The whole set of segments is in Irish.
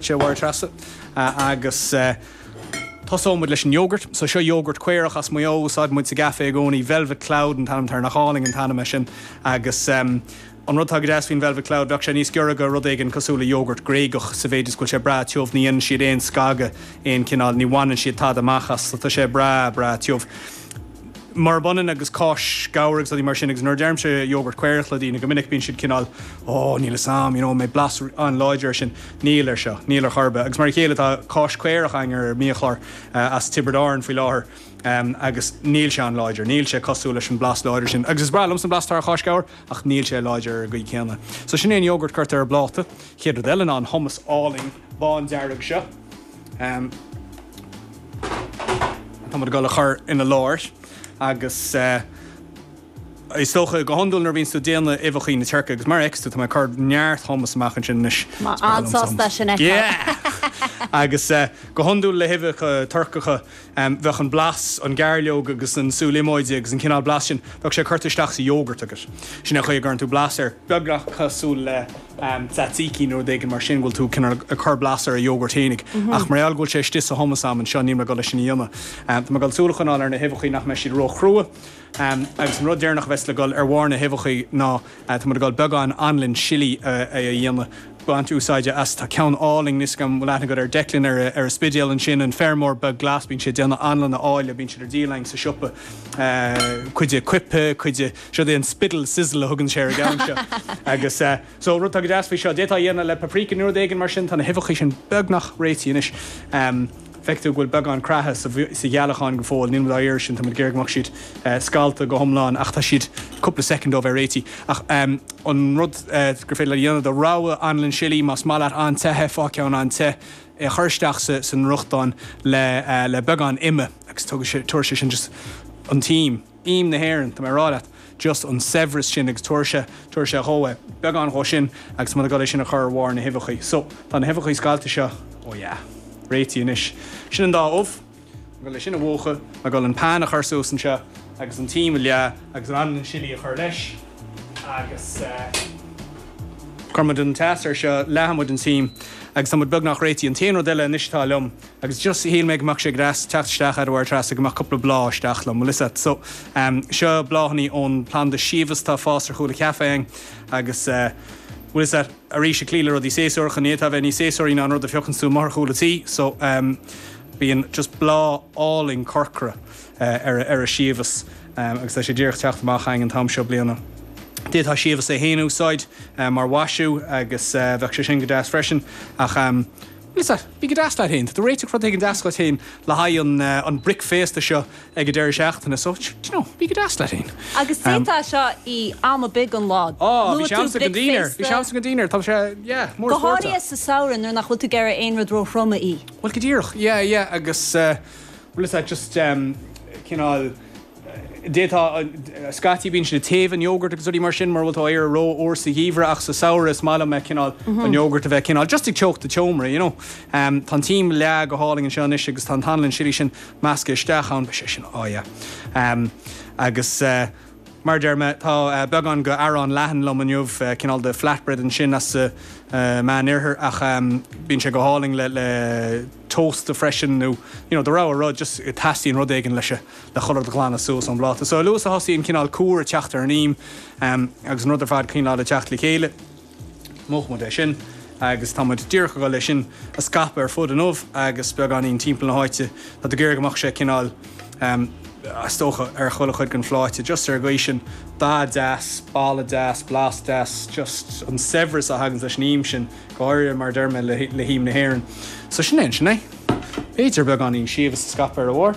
Sea, a Mháire Treasa agus tosóidh muid leis an iógart. So seo iógart caorach as Maigh Eo a úsáideann muid sa gcaife i gcónaí. Velvet Cloud an t-ainm atá air, nach álainn an t-ainm é sin? Agus an rud atá go deas faoin Velvet Cloud, bheadh sé níos giorra do rud éigin cosúil le iógart Gréigeach sa mhéid is go bhfuil sé breá tiubh, ní dhéanann siad aon scagadh, aon cineál, ní bhaineann siad tada amach as, so tá sé breá, breá tiubh. murab ionann agus cáis ghabhair agus rudaí mar sin, agus nuair a deirimse yogurt caorach le daoine, go minic bíonn siad cineál, oh, níl 'fhios a'm, you know, an mbeidh blas an-láidir air sin? Níl, air seo, níl ar chor ar bith. Agus mar a chéile, tá cáis caorach againn ar an mbiachlár as Tiobraid Árann faoi láthair agus níl sé an-láidir, níl sé cosúil leis an blas láidir sin. Agus is breá liomsa an blas atá ar cháis ghabhair ach níl sé láidir ar an gcaoi céanna. So sin é an yogurt, cuirtear ar an bpláta. Chéad rud eile ná an hummus álainn. bándearg seo atá muid ag dul a chur ina lár agus is dócha go hiondúil nuair a bhíonn tú ag déanamh uibheacha na Tuirce agus mar a fheiceas tú tá mé ag cur neart hummus amach ansin anois. Tá an-sásta sin a fheiceáil. Yeah! Agus go hiondúil le huibheacha Turcacha bheadh an blas, an gairleog agus an sú líomóide agus an cineál blas sin, bheadh sé curtha isteach sa yogurt agat. Sin é an chaoi a gcuireann tú blas air, beagnach cosúil le tzatziki nó rud éigin mar sin, go bhfuil tú cineál ag cur blas ar an yogurt fhéinig. Ach mar gheall go bhfuil sé istigh sa hummus a'm anseo, níl mé ag dul é sin a dhéanamh. Tá mé ag dul súil a choinneáil ar na huibheachaí nach mbeidh siad ró-chrua. Agus an rud deireanach a bheas le dhul ar bharr na huibheachaí ná. Tá muid ag dul beagán anlainn sillí a dhéanamh, baint úsáide as. Tá ceann álainn, níl 'fhios a'm, bhfuil aithne agat ar Declan, ar an Spidéal ansin, an feirmeoir beag glas, bíonn sé ag déanamh anlanna áille, bíonn siad ar díol againn sa siopa, cuid de coipthe, cuid de, seod é an Spiddal Sizzle a thugann sé ar an gceann seo. Agus so, rud atá go deas faoi seo, d'fhéadfá a dhéanamh le paprika nó rud éigin mar sin, tá na huibheachaí sin beagnach réitithe anois. Feicfidh tú go bhfuil beagán creatha sa ghealachán go fóill. Níl muid á iarraidh sin, tá muid ag iarraidh go mbeadh siad scallta go hiomlán ach tá siad cúpla soicind ó bheith réitithe. Ach an rud gur féidir leat a dhéanamh do rogha anlann sillí, más maith leat an-te é, faigh ceann an-te, é a chur isteach sa bhfriochtán le beagán ime agus tabharfaidh sé, tabharfaidh sé sin just an t-im. Im na hÉireann, tá mé ag rá leat, just an saibhreas sin agus tabharfaidh sé, tabharfaidh sé dhó é, beagán dhó sin agus muid ag dul é sin a chur ar bharr na huibheachaí. So, tá na huibheachaí scallta seo, oh yeah, réitithe anois. Sin an dá ubh, ag dul é sin a mhúchadh, ag dul an pan a chur suas anseo agus an t-im a leá agus ansin an sillí a chur leis agus eh, cuirfidh muid an teas air seo, leáfaidh muid an t-im agus tá muid beagnach réitithe. An t-aon rud eile anois atá liom Agus just shíl mé go mbeadh sé go deas teacht isteach a Mháire Treasa go mbeadh cúpla bláth isteach liom, bhfuil a fhios agat. So, seo bláthanna ón planda síobhais, atá ag fás ar chúl an chaifé againn agus, bhfuil a fhios agat, arís ag cloí le rudaí séasúracha, ní fhéadfá a bheith níos séasúraí ná an rud a phiocanns tú amuigh ar chúl an tí. So, bíonn just bláth álainn corcra ar an síobhas agus tá sé díreach ag teacht amach againn an t-am seo bliana. D'fhéadfá an síobhas é féin a úsáid mar mhaisiú agus bheadh sé sin go deas freisin ach, Anois a, bí go deas leat féin, tá tú ag réiteach rud éigin deas dhuit féin le haghaidh an bhricféasta seo ag an deireadh seachtaine so, d'you know, bí go deas leat féin. Agus d'fhéadfá é seo a ithe am ar bith den lá, Á, bhí sé agamsa ag an dinnéar, bhí sé agamsa ag an dinnéar, tá sé, yeah, mór spóirt a. Go háirithe sa samhradh nuair nach bhfuil tú ag iarraidh aon rud ró-throm a ithe. Bhuel, go díreach, yeah, yeah, agus, bhfuil a fhios agat, just, cineál, D'fhéadfadh. Scaití bíonn siad ag téamh an iógart agus rudaí mar sin mura bhfuil tú ag iarraidh é rófhuar sa gheimhreadh ach sa samhradh is maith liom eh cineál, an iógart a bheith cineál just ag teocht an tseomra you know. Em tá an t-ím ag leá go hálainn anseo anois agus tá an t-anlann chili sin measctha isteach ann, beidh sé sin oh yeah. Em agus eh mar a deir mé tá eh beagán de arán leathan liom inniu eh cineál de flatbread ansin as sa eh meán oirthear ach em bíonn sé go hálainn le le toast freisin nó you know do rogha rud just teastaíonn rud éigin leis a na culaith a ghlanadh suas ón bpláta. So a luaithe is a thosaíonn cineál cúr ag teacht ar an ím agus an rud ar fad cineál ag teacht le chéile, múchfaidh muid é sin agus tá muid díreach ag dul é sin a scaipeadh ar fud an ubh agus beagáinín timpeall na háite. Tá tú ag iarraidh go mbeadh sé cineál is dócha ar chuile chuid den phláta, just ar an gcaoi sin, dath deas, boladh deas, blas deas, just an saibhreas a thaganns leis an ím sin, go háirithe mar a deir mé le hím na hÉireann. So sin é ansin é. B'fhéidir beagáinín síobhas a scaipeadh ar a bharr.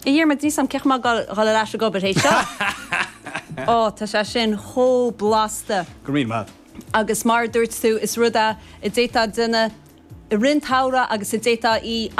A Dhiarmaid, níl a fhios agam cén chaoi a bhfuil mé ag dul ar ais ag obair théis seo! Ó, tá sé sin chomh blasta! Go raibh maith. Agus mar a dúirt tú, is rud é a d'fhéadfá a dhéanamh i rith an tsamhraidh agus a d'fhéadfá a ithe a.